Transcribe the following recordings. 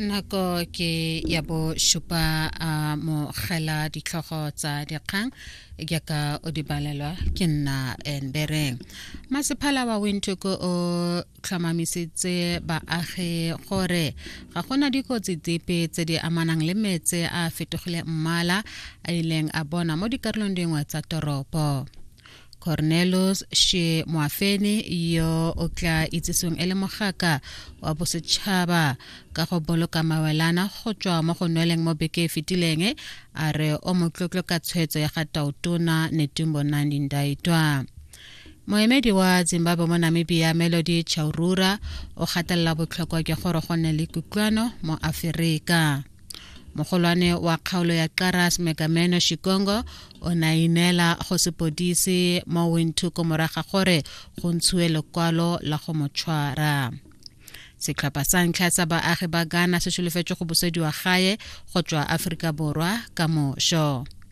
nako ke ya bo šupa a mogela ditlhogo tsa dikgang jaaka o di balelwa ke nna embereng masephala wa wintoko o tlhomamisitse baagi gore ga gona dikotsi dipe tse di amanang le metse a fetogile mmala a ileng a bona mo dikarolong dingwe tsa toropo cornelos she moafene yo o tla itsesong e le mogaka wa bosetšhaba ka go boloka mawelana go tswa mo go nweleng mo beke e fetileng a re o motlotlo ka tshwetso ya ga tautona netumbo nandi ndaitwa moemedi wa zimbabwe mo namibia melody chaurura o gatelela botlhokwa jwa gore go nne le kutlwano mo aferika mogolwane wa kgaolo ya qaras megameno shikongo o ne a ineela go sepodisi mo wintuko moraga gore go ntshiwe lekwalo la go mo tshwara setlhopha sa ntlha sa baagi ba ghana se solofetse go busediwa gae go tswa aforika borwa ka mošo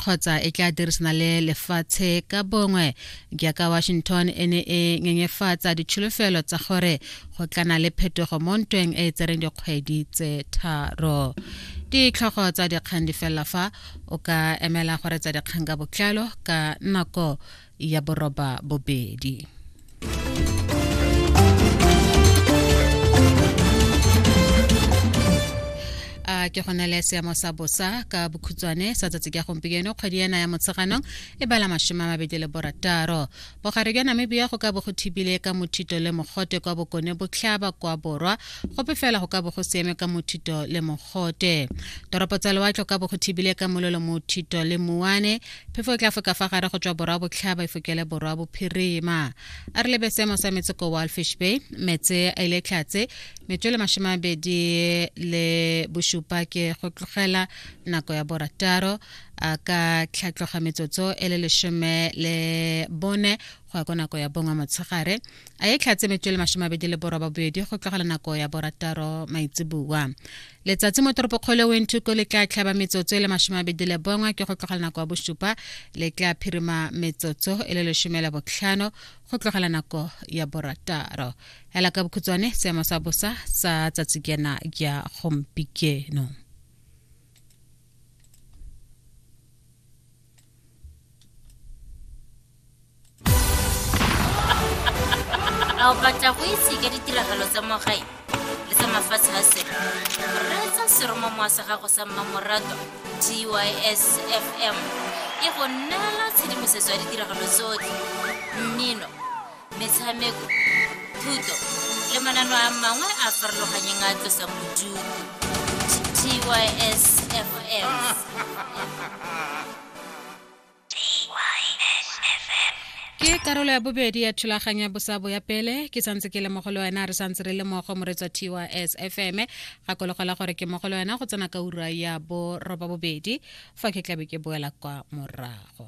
kgotsa e tla dirisana le lefatshe ka bongwe jaaka washington e ne e nyenyefatsa ditsholofelo tsa gore go tlana le phetogo mo ntweng e e tsereng dikgwedi tse tharo ditlhogo tsa dikgang di felela fa o ka emela gore tsa dikgang ka botlalo ka nako ya boroba bobedi a ke go na le seemo sa bosa ka bokhutswane sa tsatsi ka gompieno kgwedi ena ya motsheganong e bala masome a mabedi le borataro bogare jwa namibia go ka bo go thibile ka mothito le mogote kwa bokone botlhaba kwa borwa gope fela go ka bo go sieme ka mothito le mogote toropo tsa lewatlho ka bo go thibile ka mololo mothito le muane Phefo e tla foka fa gare go tswa borwa botlhaba e fokele borwa bophirima. A re lebe seemo sa metse ko Walfish Bay, metse a ile tlhatse metswele masome a bedi le bosupa ke go tlogela nako ya borataro a ka tlhatloga metsotso e le lesome le bone go ya ko nako ya bongwe motshegare a e tlhatse metswele masome a bedi le boroba bobedi go tlogela nako ya borataro maitseboa letsatsi mo toropokgolo ya wentuko le tla tlhaba metsotso e le masome abedi le bongwe ke go tlogela nako ya bosupa le tla phirima metsotso e le lesome la botlhano go tlogela nako ya borataro ela ka bokhutshwane seemo sa bosa sa tsatsi kena ya gompieno a o batla go itse ka ditiragalo tsa mo gae le tsa mafatshe a sele reetsa seromamowa sa gago sa mmamorato tys fm e go neela tshedimosetso ya ditiragalo tsotlhe mmino metshameko thuto le manano a mangwe a farologanyeng a tlosang bodutu tysfm ke karolo ya bobedi ya thulaganyo ya bosabo ya pele ke santse ke le mo go le wena re santse re le mogo moretswa tys fm gakologelwa gore ke mo go le wena go tsena ka ura ya boroba bobedi fa ke tlabe ke boela kwa morago